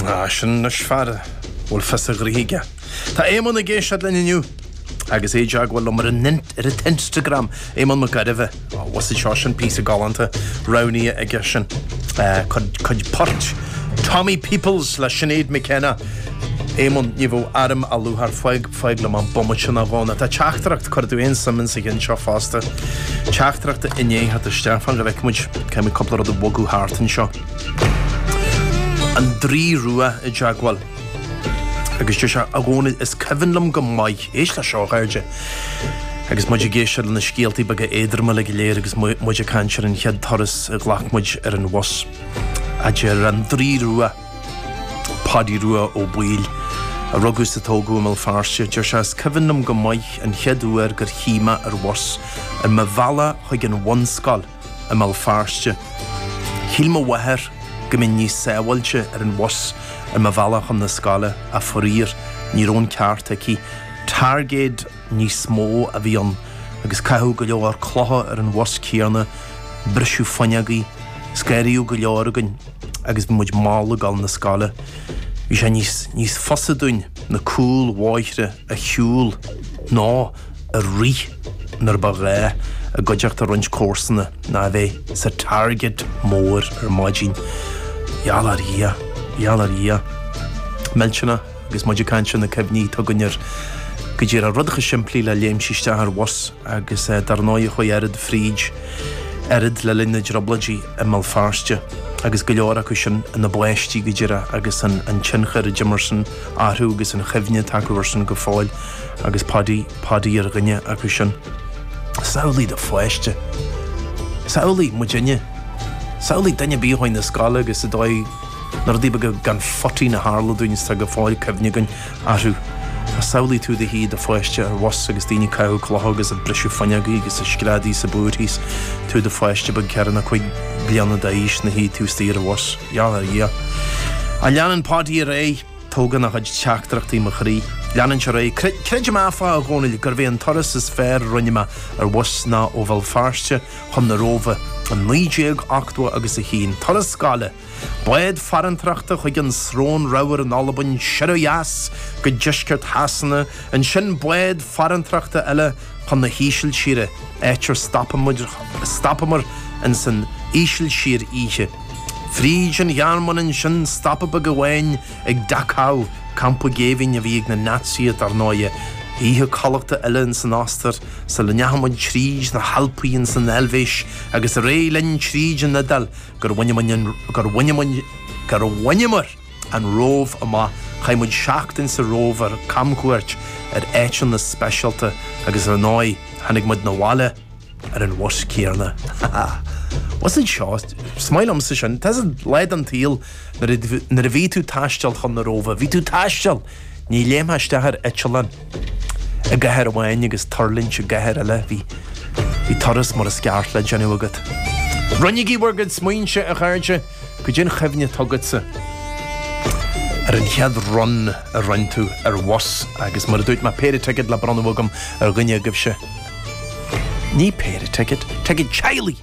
Ah, sin anois fear a bhfuil fios a ghraithe aige. Tá Éamonn ag éisteacht linn inniu agus é i dteagmháil liom ar an Instagram, Éamonn Mac Gairbheith. Ó, bhuasaigh seo, sin píosa galánta roghnaithe aige sin. Cuid port Tommy Peoples le Sinéad McKenna. Éamonn, ní bheadh airm á lú thar faig, faig liom an bomaite sin á dhónadh. Tá teachtaireacht, cuirfidh tú an-suim insa cheann seo fosta, teachtaireacht i ndiaidh a theacht isteach. Fan go bhfeicfimid, caithfimid cúpla rud a bhogadh thart anseo. an Draoi Rua i dteagmháil agus deir sé, A Dhónaill, is cuimhin liom go maith, éist leis seo a chairde, agus muid ag éisteacht le na scéaltaí beaga éadroma uilig go léir agus muid ag caint ar an chéad turas a ghlac muid ar an bhus, a deir an Draoi Rua, Pádaí Rua Ó Baoill, a rugadh is a tógadh i mBéal Feirste, deir sé, Is cuimhin liom go maith an chéad uair gur shuigh mé ar bhus ar mo bhealach chuig an bhunscoil. i mBéal Feirste. Shíl mo mháthair go mbeinn níos sábháilte ar an bhus ar mo bhealach chun na scoile ach faraor ní raibh an ceart aici. Targaid níos mó a bhí ann agus caitheadh go leor clocha ar an bhus céanna, briseadh fuinneogaí, scanraíodh go leor againn agus bhí muid mall ag dul na scoile. Bhí sé níos fusa dúinn na cúlbhóithre a shiúl nó. a rith nuair ba ghá i gcuideachta roinnt comharsana ná a bheith sa targaid mór ar maidin. Gheall ar Dhia, gheall ar Dhia. Millteanach, agus muid ag caint ar na cuimhní, atá againn ar go díreach rudaí chomh simplí le léimt isteach ar bhus agus dar ndóigh chuaigh oiread fríd oiread le linn na dtrioblóidí i mBéal Feirste agus go leor acu sin ina bpáistí go díreach agus an tionchar a d'imir san orthu agus an chuimhne atá acu ar san go fóill. agus Pádaí, Pádaí ar dhuine acu sin. Samhlaigh do pháiste. Samhlaigh muidinne. Samhlaigh duine ar bith a chuaigh na scoile agus an dóigh na rudaí beaga gan phoitín a tharla dúinn is tá go fóill cuimhne againn orthu. Samhlaigh tú i do shuí i do pháiste ar bhus agus daoine ag caitheamh clocha agus ag briseadh fuinneogaí agus ag screadaí is ag búirthí is tú i do pháiste beag ceithre nó cúig bliana d'aois ina shuí tú istigh ar bhus. Gheall ar Dhia. A leanann Pádaí ar aghaidh Tógann a chuid teachtaireachtaí mo chroí. Leanann sé ar aghaidh, Creid, creidim áfach, a Dhónaill, gurbh é an turas is fearr a rinne mé ar bhus ná ó Bhéal Feirste chun na Róimhe in 1980 agus a 1, turas scoile, bád farantóireachta chuig an Srón Reamhar in Albain, siar ó dheas go deisceart Shasana, ansin bád farantóireachta eile, chun na hÍsiltíre, áit ar stopamar in san Ísiltír oíche. Fríd an Ghearmáin ansin stopadh uair amháin ag Dachau, campa géibhinn a bhí ag na Naitsithe dar ndóighe. Oíche codlata eile in san Ostair sula ndeachamar tríd na hAlpaí in san Eilvéis agus ar aghaidh linn tríd an Iodáil gur bhaineamar an Róimh amach, chaith muid seachtain sa Róimh ar camchuairt ar áiteanna speisialta agus ar ndóigh tháinig muid na bhaile ar an bhus céarna. Ha ha. Bus, a deir sé! Is maith liomsa sin. Bhí sin lá den tsaol nuair a nuair a bhí tú taisteal chun na Róimhe, bhí tú taisteal! Ní léimtheá isteach ar eiteallán i gcathair amháin agus tuirlingt i gcathair eile, bhí bhí turas mar is ceart le déanamh agat. Roinnigí bhur gcuid smaointe, a chairde! Goidé an chuimhne atá agatsa ar an chéad run a rinn tú ar bhus agus mar a dúirt mé péire ticéad le bronnadh agam ar dhuine agaibhse. Ní péire ticéad, ticéad teaghlaigh!